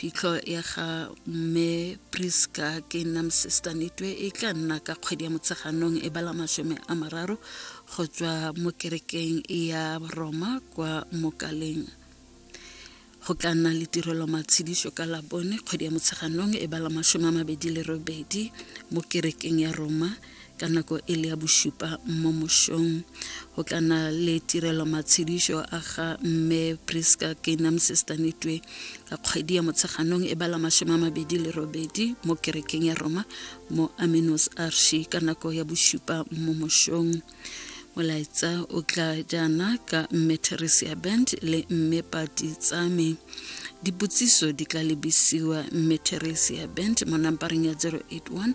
phitlho ya ga mme priska ke nam sister nitwe e tla nna ka kgwedi ya motsheganong e bala masome a mararo go tswa mo kerekeng ya roma kwa mokaleng go tla nna le tirelo matshediso ka labone kgwedi ya motsheganong e bala masome a mabedi le robedi mo kerekeng ya roma ka nako e le ya bosupa mo mosong go tla na le tirelo matshedišo a ga mme priska kenam sestanetwe ka kgwedi ya motsheganong e bala masome a mabedi le robedi mo kerekeng ya roma mo aminos arshi ka nako ya bosupa mo mosong molaetsa o tla jaana ka mme theresia band le mme pati tsame dipotsiso di tla lebisiwa mme theresia band mo nampareng ya 081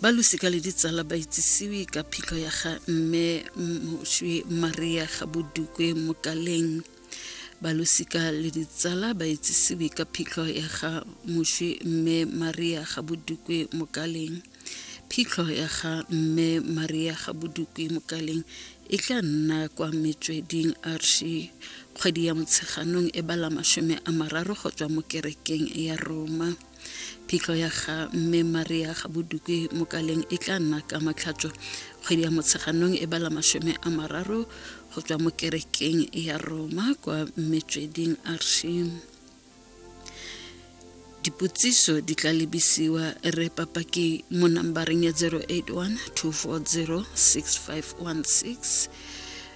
ba losika le ditsala ba itsisiwe ka phitlho ya ga mme moswi maria ga bodukwe mokaleng ba losika le ditsala ba itsisiwe ka phitlho ya ga moswi mme maria ga bodukwe mokaleng phitlho ya ga mme maria ga bodukwe mokaleng e tla nna kwa metsweding arshi kgwedi ya motsheganong e bala masome a mararo go tswa mo kerekeng ya roma phitlho ya ga mme maria ga bodukwe mokaleng e tla nna ka matlhatso kgwedi ya motsheganong e bala masome a mararo go tswa mo kerekeng ya roma kwa metsweding arshim dipotsiso di tla lebisiwa re papaki mo nambareng ya 081 240 6516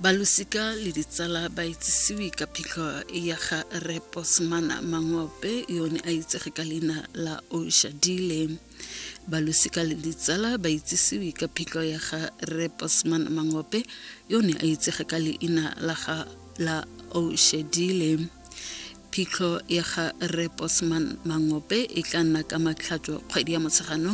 balosika le ditsala ba itsisiwe ka phitlho ya ga re posmana mangope yone a itsege ka leina la oshadile balosika le ditsala ba itsisiwe ka phitlho ya ga re posmana mangope yone a itsege ka leina la ga la oshadile phitlho ya ga re posman mangope e tla nna ka matlhatso kgwedi ya motsheganong